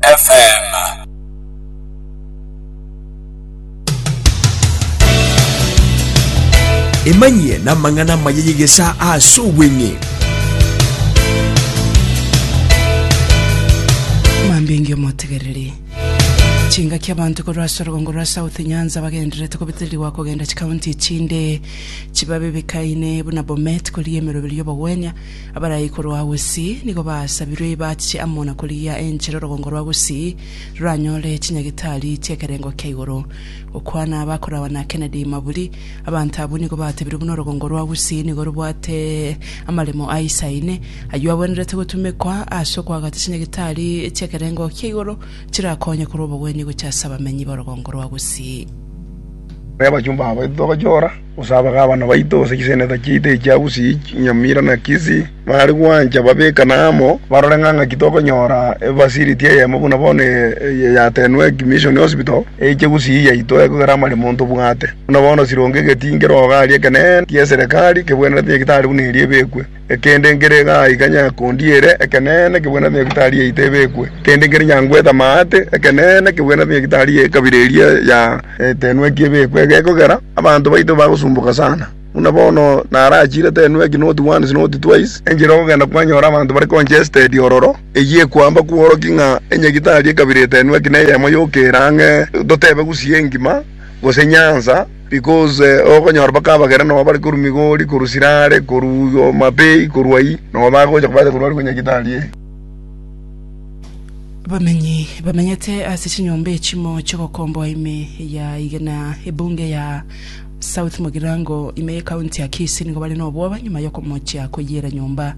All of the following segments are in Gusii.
FM. Emanyie namang'ana amaya y'egesaa ase obweng'e. Mambinge omotegereri. Chingaki abanto korwa ase orogongo rwa South Nyanza bagendererete kobitirirwa kogenda chikaunti echinde chibabe bikaine buna Bomet korigemerwa ebiru y'obogwenia Abarai korwa gusii nigo basabirwe ibache amo na korigia enchera orogongo rwa gusii roranyore chinyagitari chi'ekerengo kia igoro. Gokwana bakoragwa na Kennedy Maburi, Abanto abwo nigo batebirwe buna orogongo rwa gusii nigo robwate amaremo aisaine, ayio agwenerete gotumekwa ase okoagacha chinyagitari chi'ekerengo kia igoro chirakonye korwa obogwenia gochia ase abamenyi b'orogongo rwa gusii. Abachumba abo titobachoora, Gose abagabana baito gose chisenetor chiaito echi chia Usi, Nyamira, na Kisi, baare gwancha babekane amo, barore ng'a ng'aki tokonyora efacility eyemo buna bono eye yatenwe eki Mission Hospital, eiche Gusii yaito ekogera amaremo ntobwate. Buna bono sironge egetinki rogo aria ekeneene, eke'eserekari, kebwenerete, egetari buna eria ebekwe. Ekende nkere igaa iga nyakondi ere, ekeneene kebwenerete nyagitari yaito ebekwe. Ekende nkere nyangwete amaate, ekeneene kebwenerete nyagitari y'ekabira eria ya Etenweki ebekwe. Egekogera abanto baito bagosumboka sana, buna bono narachire Tenweki not once not twice, enchera ogogenda kwanyora abanto bare congested ororo, eyio ekwamba kworokia ng'a enyagitari y'ekabira Etenweki neyemo yokera ang'e, totebe gusii engima, gose nyansa, Because okonyora mpaka abagera nonya bare korwa Migori, korwa Sirare, korwa Omabei, korwa ayio, nonya bagocha kobacha korwa ariko Nyagitari ee. Abamenyi bamenyete ase chinyomba echimo chiogokomboa ime ya Igena ebunge ya South Mugirango ime ye county ya Kisii nigo bare nobwoba nyuma yokomochia koyiera nyomba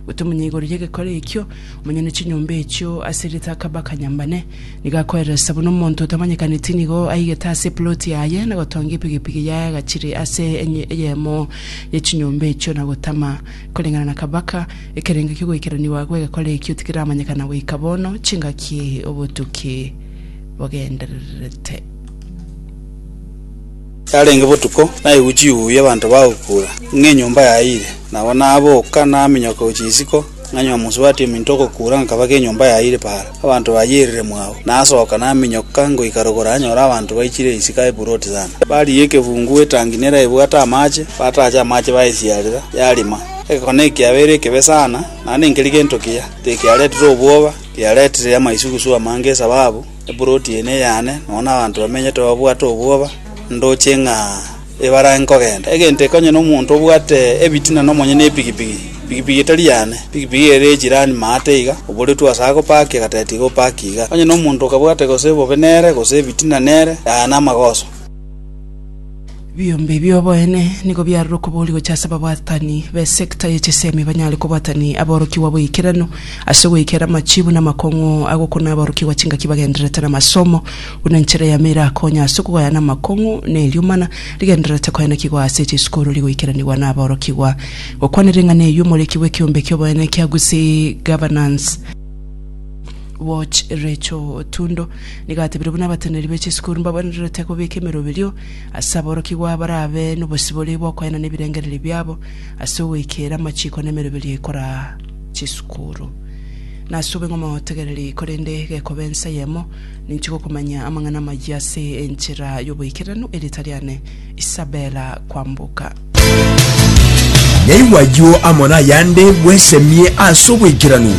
gotomunya igoro yegekore ekio, omonye ne chinyomba echio ase rita Kabaka Nyambane. Nigo akoeresa buna omonto otamanyekaneti nigo aigete ase epuloti yaye, na gotonga epigepige yaye agachire ase enye eyemo ye chinyomba echio, na gotama. Koreng'ana na kabaka, ekerengo ki'ogoikeranigwa agwo egekora ekio tikiramanyekana goika bono, chingaki obotuki bogendererete. Yarenge botuko, naigwe chiuya abanto bagokura, ng'a enyomba yaire. Nabo naboka, naminyoka gochia isiko, Ng'a nyomosubati ominto ogokuura ngakabaka enyomba yaye ire paara, abanto bayio erire mwao. Nasoka naminyoka ngoika rogoro nanyora abanto baichire isiko aye buroti sana. Barigia ekefungu etangi neraebwate amache, bataacha amache baesiarera, yarima. Egekone ekiabo ere ekebe sana, naende nkeri gento kiya, tekiaretire obwoba, tiaretire amaisugusugu amange esababu eburoti eye neyane, nonya nabanto bamenyete babwate obwoba, ndoche ng'a. Ebarange kogenda, egento ekonyene omonto obwate ebitina nomonyene epigipigi. Pigipigi tari yane, pigipigi ere ye chirani maate iga, oboretwe ase agopakia, egateta iga opakie iga. Onye nomonto okabwate gose bobe nere, gose ebitina nere, yaya namagoso. Ebiombe ebi oboene nigo biarure okoboria gochia ase ababwatani b'esekta ye chisemi banyare kobwatania aborokigwa bw'eikeranu ase goikera amachibu na amakong'u agokuna aborokigwa chingaki bagendererete namasomo. Buna enchera yamo erakonya ase okogayana amakong'u neriomana, rigendererete koenekigwa ase chisukuru rigoikeranigwa naborokigwa. Gokwana ring'ana eyio omoriki bw'ekeombe ki'oboenene kia Gusii Governance, Watch Recho Otundo, nigo atebire buna abateneneri be chisukuru mbagwenererete kobeka emeroberio ase aborokigwa barabe nobosibore bw'okoenana ebirengererio biabo ase ogoikera amachiko nemeroberio ekora chisukuru. Nasobe ng'omotegereri korende gekoba ensa yemo, Ninchiga okomanya amang'ana amayia ase enchera y'oboikeranu, erieta riane Isabella Kwamboka. Naigwa ayio amo nayande bwesemie ase oboikeranu.